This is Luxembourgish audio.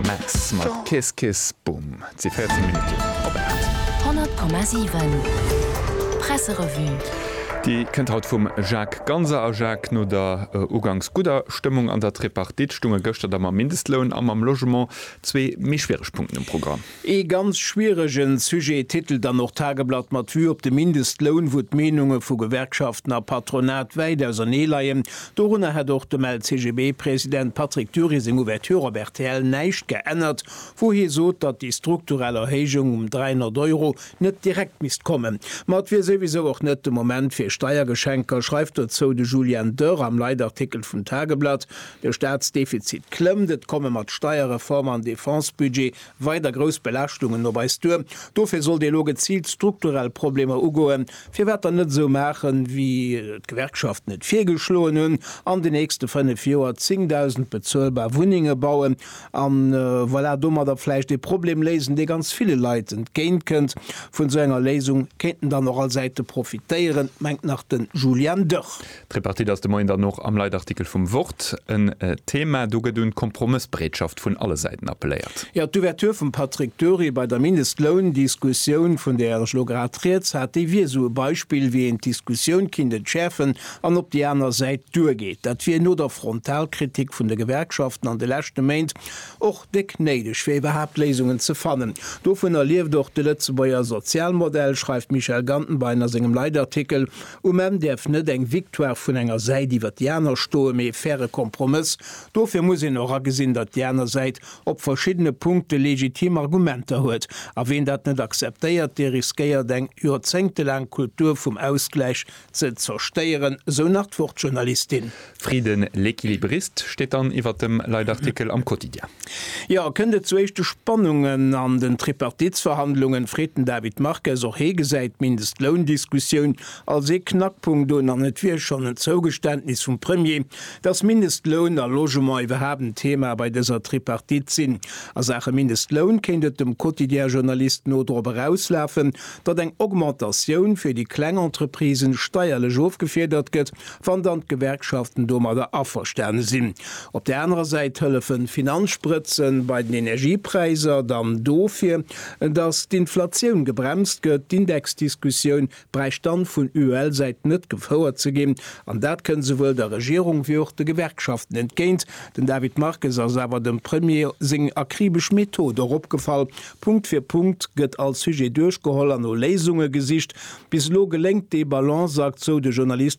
Max mat Kiss Kiss Boom. Et si 14 Minutten op 8. 100,7 Presserevue. Déi kënnt haut vum Jacques Ganser. A Jacques, no der uganks gudder Stëmmung an der Tripartite, stounge gëschter da mam Mindestloun a mam Logement zwee méi schwiereg Punkten um Programm. Ee ganz schwieregen Sujet, titelt dann och d'Tageblatt mat Vue op de Mindestloun, wou d'Meenunge vu Gewerkschaften a Patronat wäit ausernee leien. Dorunner hätt och dem LCGB-President Patrick Dury seng Ouverture op rtl näischt geännert, wou hie sot, datt déi strukturell Erhéijung um 300 Euro net direkt misst kommen. Ma et wier souwisou och net de Moment fir Steiergeschenker, schreift dozou de Julien Dörr am Leitartikel vum Tageblatt. De Staatsdefizit klëmmt, et komme mat Steierreform an Defense-Budget weider grouss Belaaschtungen op eis duer. Dofir sollt ee elo geziilt strukturell Problemer ugoen. Firwat dann net esou maachen, wéi et d'Gewerkschaften et virgeschloen hunn, an den nächste fënnef Joer 10.000 bezuelbar Wunnenge bauen a voilà, domadder vläicht ee Problem léisen, dee ganz ville Leit entgéint kënnt. Vun esou enger Léisung kéinten dann och all Säite profitéieren, mengt nach de Julian Dörr. D'Tripartite ass de Moien dann och am Leitartikel vum Wort en Thema. Do gëtt un d'Kompromëssbereetschaft vun alle Säiten appelléiert. Jo, d'Ouverture vum Patrick Dury bei der Mindestloundiskussioun, vun där ech elo grad Rieds hat, déi wier esou e Beispill, wéi een d'Diskussioun kinnt entschäerfen an op déi aner Säit duergeet. Dat wier no der Frontalkritik vun de Gewerkschaften an de leschte Méint och déck néideg, fir iwwerhaapt Léisungen ze fannen. Dovunner lieft och de Lëtzebuerger Sozialmodell, schreift d'Michèle Gantenbein a sengem Leitartikel. Um Enn däerf net eng Victoire vun enger Säit iwwer déi aner stoen, mee e faire Kompromëss. Dofir muss een och agesinn, datt déi aner Säit op verschiddene Punkte legitim Argumenter huet. A ween dat net akzeptéiert, dee riskéiert eng joerzéngtelaang Kultur vum Ausgläich ze zerstéieren, sou nach d'Wuertjournalistin. Frieden, L'Equilibriste steet dann iwwer dem Leitartikel am Quotidien. Jo, kënnt et zu éischte Spannungen an den Tripartitsverhandlungen, freet den David Marques. Och hee gesäit d'Mindestloundiskussioun als ee Knackpunkt un an et wier schonn en Zougeständnis vum Premier, datt Mindestloun a Logement iwwerhaapt en Thema bei dëser Tripartite sinn. A Saache Mindestloun kéint et dem Quotidien-Journalist no drop erauslafen, datt eng Augmentatioun fir déi kleng Entreprisen steierlech ofgefiedert gëtt wann dann d'Gewerkschaften domadder averstane sinn. Op där anerer Säit hëllefen d'Finanzsprëtzen bei den Energiepräiser dann dofir, datt d'Inflatioun gebremst gëtt. D'Indexdiskussioun bräicht dann vun UEL-Säit net gefouert ze ginn, an dat kënnt esouwuel der Regierung wéi och de Gewerkschaften entgéint. Den David Marques ass awer dem Premier seng akribesch Method och opgefall, Punkt fir Punkt gëtt all Sujet duerchgeholl an no Léisunge gesicht. Bis elo geléngt dee Balanceakt, sou de Journalist.